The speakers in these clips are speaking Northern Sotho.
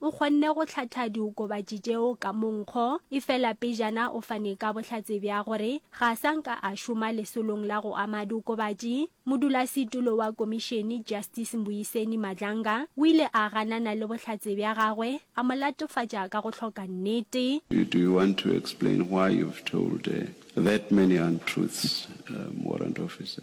O kgonne go hlatha diokobatši tšeo ka monkgo, efela pejana o fane ka bohlatse bja gore ga a sa nka a šoma lesolong la go ama diokobatši. Modulasetulo wa komišene, Justice Mbuyiseni Madlanga, o ile a ganana le bohlatse bja gagwe, a mo latofatša ka go hloka nnete. You, do you want to explain why you've told that many untruths, Warrant Officer?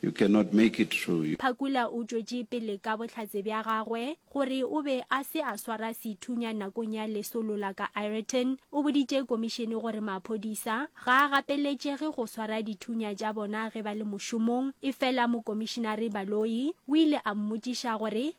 You cannot make it through, you. Phakula o tšwetše pele ka bohlatse bja gagwe gore o be a se a swara sethunya nakong ya lesolo la ka Ireton. O boditše komišene gore maphodisa ga a gapeletšege go swara dithunya tša bona ge ba le mošomong, efela Mokomišenare Baloyi o ile a mmotšiša gore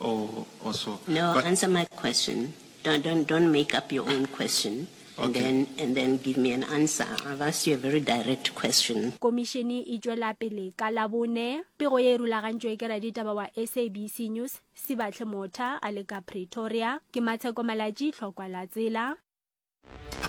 No, answer my question. Don't, don't, don't make up your own question and then, and then give me an answer. I've asked you a very direct question. Komišene e tšwelapele ka Labone. Pego ye e rulagantšwe ke raditaba wa SABC News, Sibahle Motha, a le ka Pretoria. Ke Matsheko Malatji, Hlokwa la tsela.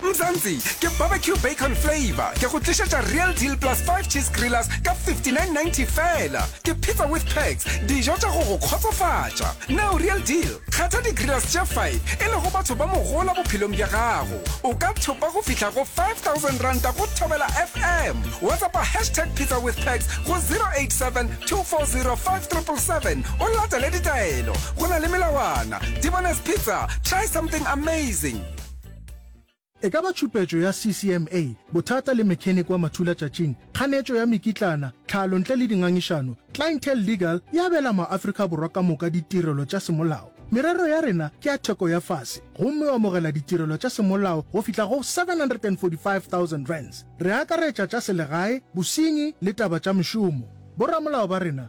Mzansi, ke barbecue bacon flavor. Ke go tlišetša Real Deal Plus 5 Cheese Grillers ka 59.90 fela. Ke pizza with perks, dijo tša go go kgotsofatša. Now Real Deal, kgetha di-grillers tše 5 e lego batho ba mogola bophelong bja gago. O ka thopa go fihla go R5,000 go Thobela FM. WhatsAppa hashtag pizza with perks go 087 240 577 o latele ditaelo. Go na le melawana. Tibones Pizza, try something amazing! E ka ba tšhupetšo ya CCMA, bothata le mechanic wa mathulatšatšing, kganetšo ya mekitlana, tlhalo ntle le dingangišano, Clientele Legal e abela maAfrika Borwa ka moka ditirelo tša semolao. Merero ya rena ke ya theko ya fase, gomme o amogela ditirelo tša semolao go fihla go R745,000. Re akaretša tša selegae, bosenyi le taba tša mešomo. Boramolao ba rena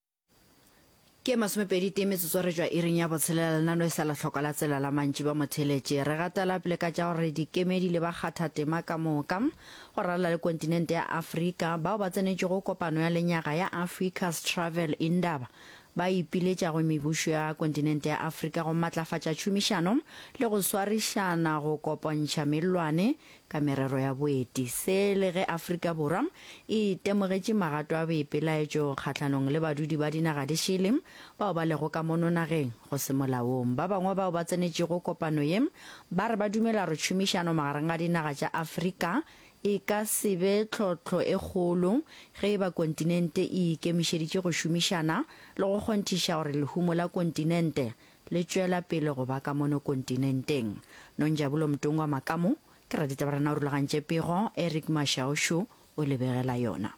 Ke masomepedi tee metsotso re tšwa iring ya botshelela lenano e sa la hloko la tsela la mantši ba motheletše. Re gatela pele ka tša gore dikemedi le bakgathatema ka moka go ralala le kontinente ya Afrika bao ba tsenetšego kopano ya lenyaga ya Africa's Travel Indaba ba ipiletšago mebušo ya kontinente ya Afrika go matlafatša tšhomišano le go swarišana go kopontšha mellwane ka merero ya boeti, se le ge Afrika Borwa e itemogetše magato a boipelaetšo kgahlanong le badudi ba dinaga di šele bao ba lego ka mono nageng go se molaong. Ba bangwe bao ba tsenetšego kopano ye ba re ba dumela gore tšhomišano magareng ga dinaga tša Afrika e ka se be tlhohlo e kgolo ge e ba kontinente e ikemišeditše go šomišana le go kgonthiša gore lehumo la kontinente Le tšwela pele go ba ka mono kontinenteng. Nonjabulo Mtungwa Makamu, ke raditabarena o rulagantše pego, Eric Mashaušu o lebegela yona.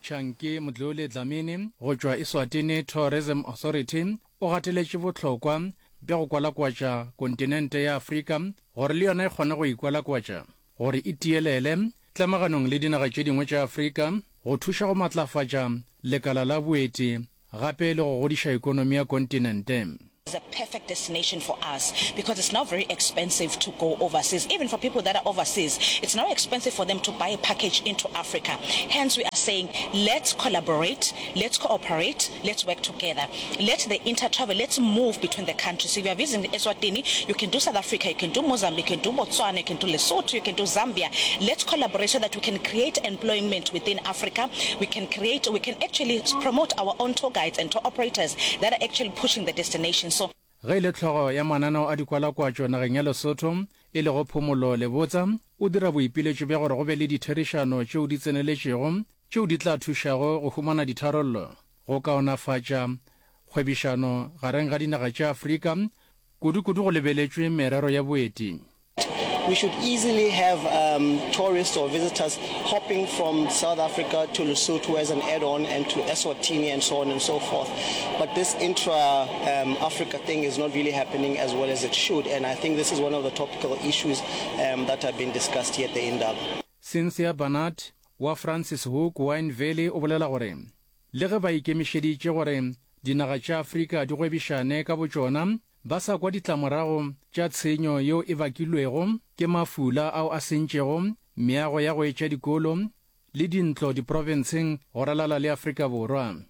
Chunky Mdluli Dlamini go tšwa Eswatini Tourism Authority o gateletše bohlokwa bja go kwalakwatša kontinente ya Afrika gore le yona e kgone go ikwalakwatša. gore e tielele tlamaganong le dinaga tše dingwe tša Afrika, go thuša go matlafatša lekala la boeti gape le go godiša ekonomi ya kontinente. It's a perfect destination for us because it's now very expensive to go overseas, even for people that are overseas it's now expensive for them to buy a package into Africa, hence we are saying let's collaborate. Let's cooperate, let's work together, let the inter travel, let's move between the countries. If you are visiting Eswatini, you can do South Africa, you can do Mozambique, you can do Botswana, you can do Lesotho, you can do Zambia. Let's collaborate so that we can create employment within Africa. We can create, we can actually promote our own tour guides and tour operators that are actually pushing the destination. So. Ge e le hlogo ya mananeo a dikwalakwatšo nageng ya Lesotho, e lego Phumulo Lebotsa, o dira boipiletšo bja gore go be le ditherišano tšeo di tseneletšego tšeo di tla thušago go humana ditharollo go kaonafatša kgwebišano gareng ga dinaga tša Afrika, kudu-kudu go lebeletšwe merero ya boeti. We should easily have um, tourists or visitors hopping from South Africa to Lesotho as an add-on and to Eswatini and so on and so forth. But this intra-Africa um, thing is not really happening as well as it should. And I think this is one of the topical issues um, that have been discussed here at the Indaba. Cynthia Barnard wa Francis Hook Wine Valley o bolela gore, Le ge ba ikemišeditše gore dinaga tša Afrika di gwebišane ka botšona, ba sa kwa ditlamorago tša tshenyo yeo e bakilwego ke mafula ao a sentšego meago ya go etša dikolo le dintlo diprofenseng go ralala le Afrika Borwa.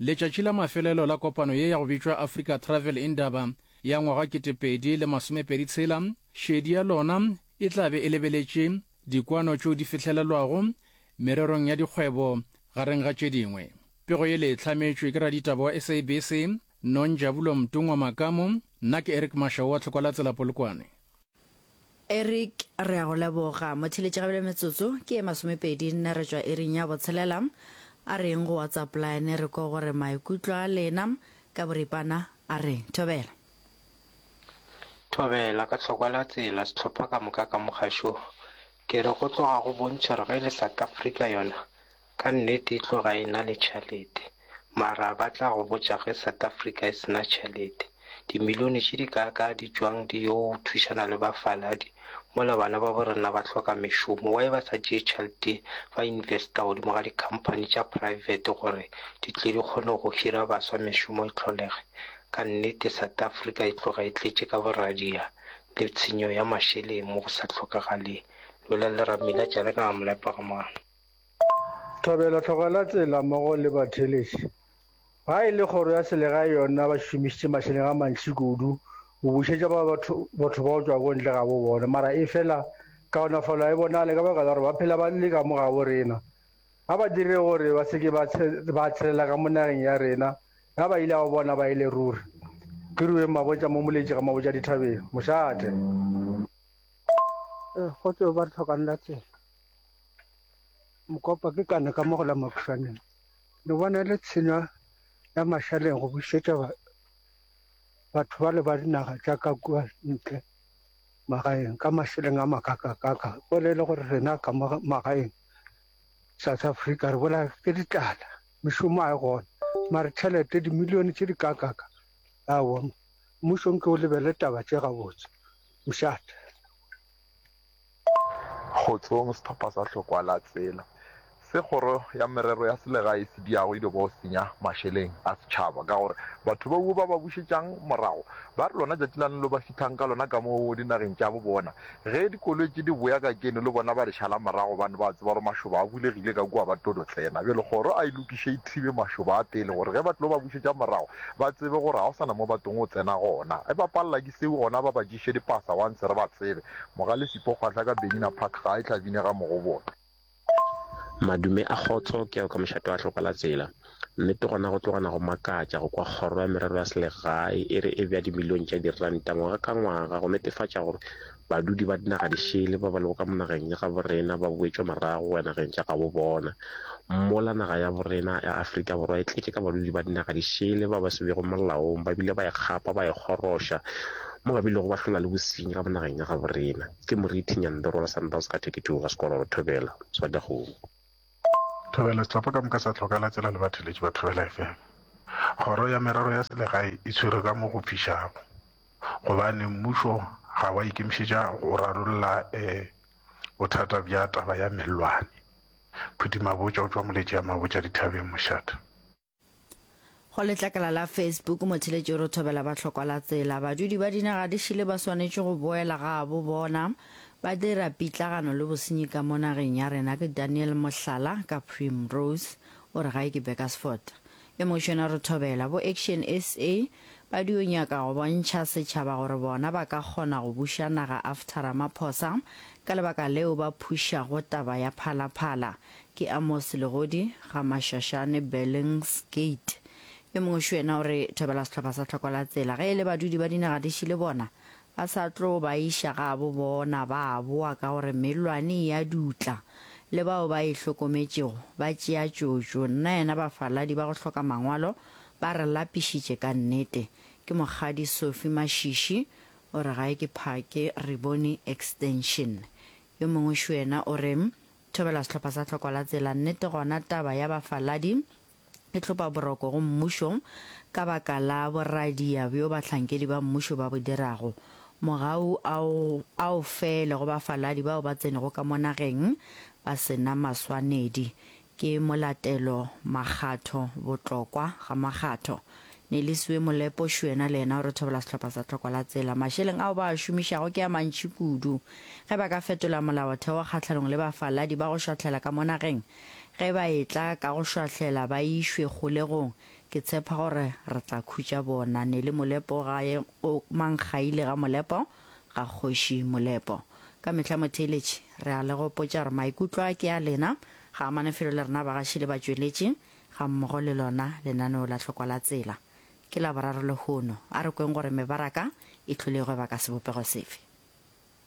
Letšatši la mafelelo la kopano ye ya go bitšwa Africa Travel Indaba ya ngwaga ketepedi le masomepedi tshela, šedi ya lona e tla be e lebeletše dikwano tšeo di fihlelelwago mererong ya dikgwebo gareng ga tše dingwe. Pego ye le e hlametšwe ke raditaba wa SABC, Nonjabulo Mtungwa Makamu, nna ke Eric Mashau wa Tlhokwalatsela Polokwane. Eric, Re a go leboga. Motheeletši gabjale metsotso ke ye masomepedi nne re tšwa iring ya botshelela. A reng go WhatsApp line re ko gore maikutlo a lena ka boripana? A re, Thobela. Thobela, Ka tlhokwa la tsela sehlopha ka moka ka mogašo ke re go tloga go bontšha gore ge e le South Africa yona Ka nnete e tlo ga ena le tšhalete, mara ba tla go botša ge South Africa e sena tšhalete. Dimilione tše di kaa kaa di tšwang di yo thušana le ba faladi mola bana babo rena ba hloka mešomo, why ba sa tšee tšhalete ba investa godimo ga di company tša private gore di tle di kgone go hira baswa mešomo e tlholege. Ka nnete South Africa e tloga e tletše ka boradia le tshenyo ya mašeleng mo go sa hlokagaleng. Lwela leramelatša le ka ga molepa ga mano. Thobela tlogela tsela mmogo le batheeletši. Ga e le kgoro ya selegae yona ba šomišitše mašeleng a mantši kudu go bušetša ba batho botho ba go tšwa ko ntle ga bo bona mara efela kaonafalo ga e bonale ka baka la gore ba phela ba le ka mo gabo rena. A ba dire gore ba se ke ba ba tshelela ka mo nageng ya rena ge ba ile a go bona ba e le ruri. Ke Rueng Mabotja mo Moletši ga Mabotja Dithabeng, Mošate. Ee, kgotso ba re tlhokang la tsela. Mokopa ke kana ka mo go la Makhutshwaneng. Le bona le tshenyo ya mašaleng go busetsa batho ba le ba dinaga tša ka kua ntle magaeng ka mašeleng a makakakaka go le le gore rena ka mo magaeng South Africa re bola ke ditlala mešomo a e gona mare tšhelete dimilione tše di kakaka a wa mmušong ke o lebele taba tše gabotse mošate. Kgotsong sehlopha sa Hlokwa la Tsela se kgoro ya merero ya selegae e se diago e lego go senya mašeleng a setšhaba ka gore batho bauo ba ba bušetšang morago ba re lona tšatši la nlo ba fithang ka lona ka mo dinageng tša bo bona ge dikoloi tše di boya ka keno le bona ba re šala morago bane ba tseba gore mašoba a bulegile ka kua ba tlo do tsena bjale kgoro a e lokiše e thibe mašoba a pele gore ge ba tlo ba bušetša morago ba tsebe gore ga go sana mo ba tong go tsena gona e ba palela ke seo gona ba ba tšiše dipasa once re ba tsebe Mogalefi Pokgwahla ka Benina Park ga a e tlabine ga Mogoboto. Madume a kgotso, ke a yo ka mošate wa hloko la tsela. Nnete gona go tlogana go makatša go kwa kgoro ya merero ya selegae e re e bea dimilione tša diranta ngwaga ka ngwaga go netefatša gore badudi ba dinaga di šele ba ba lego ka monageng ya gabo rena ba boetšwa marago go ya nageng tša gabo bona. Mola naga ya borena ya Afrika Borwa e tletše ka badudi ba dinaga di šele ba ba se bego molaong ba bile ba e kgapa ba e kgoroša mo ba bilego ba hlola le bosenyi ka mo nageng ya gabo rena. Ke Morithi Nyandoro wa Sundowns ka 32 ga Sekololo Thobela, Swadagong. Thobela, Setlhopha ka moka sa tlhokala tsela le batheletši ba Thobela FM. Kgoro ya Merero ya Selegae e tshwere ka mo go fišago gobane mmušo ga wa ikemišetša go rarolla Bothata bja taba ya mellwane. Phuti Mabotja o tšwa Moletši ya Mabotja dithabeng mošate. Go letlakala la Facebook, motheletši o re thobela ba hlokwa la tsela. Badudi ba dinaga di šele ba swanetše go boela gabo bona. Ba dira pitlagano le bosenyi ka mo nageng ya rena ke Daniel Mohlala ka Primrose, o re gae ke Bekersford. Le Mošona re thobela bo Action SA ba dio nyaka go bontšha setšhaba gore bona ba ka kgona go buša naga after Ramaphosa ka lebaka leo ba phušago taba ya Phala Phala. Ke Amos Legodi, Gamashashane, Bellings Gate. Yo mongwe Šwena o re thobela sehlopha sa Tlhokola Tsela ge e le badudi ba dinaga di šele bona A sa tlo ba iša gabo bona ba a boa ka gore mellwane e a dutla, le bao ba e hlokometšego ba tšea tšotšo. Nna yena bafaladi ba go hloka mangwalo ba re lapišitše ka nnete. Ke Mokgadi Sophie Mashishi o re gae ke phake Riboni Extension. Yo mongwe xwena o re, Thobela sehlopha sa Tlhokola Tsela, nnete gona taba ya bafaladi e hlopa boroko go mmušo ka baka la boradia bjo bahlankedi ba mmušo ba bo dirago. Mogau ao a o fele go bafaladi bao ba tsenego ka mo nageng ba se na maswanedi. Ke molatelo makgatho, botlokwa ga makgatho. Nelisiwe Molepo Šwena le yena o re thobela sehlopha sa Tlhoko la Tsela. Mašeleng ao ba a šomišago ke a mantši kudu. Ge ba ka fetola molaotheo kgahlanong le bafaladi ba go šwahlela ka mo nageng, Ge ba etla ka go šwahlela ba išwe kgolegong, ke tshepa gore re tla khutša bona. Nele Molepo ga ye go Mankgaile ga Molepo, ga Kgoši Molepo. Ka mehla motheeletši, re a le gopotša gore maikutlo a ke a lena, ga amane felo le rena bagaši le batšweletši, ga mmogo le lona lenaneo la Hlokwa la Tsela. Ke Laboraro lehono. A re kweng gore mebaraka e hlolegwe baka sebopego sefe.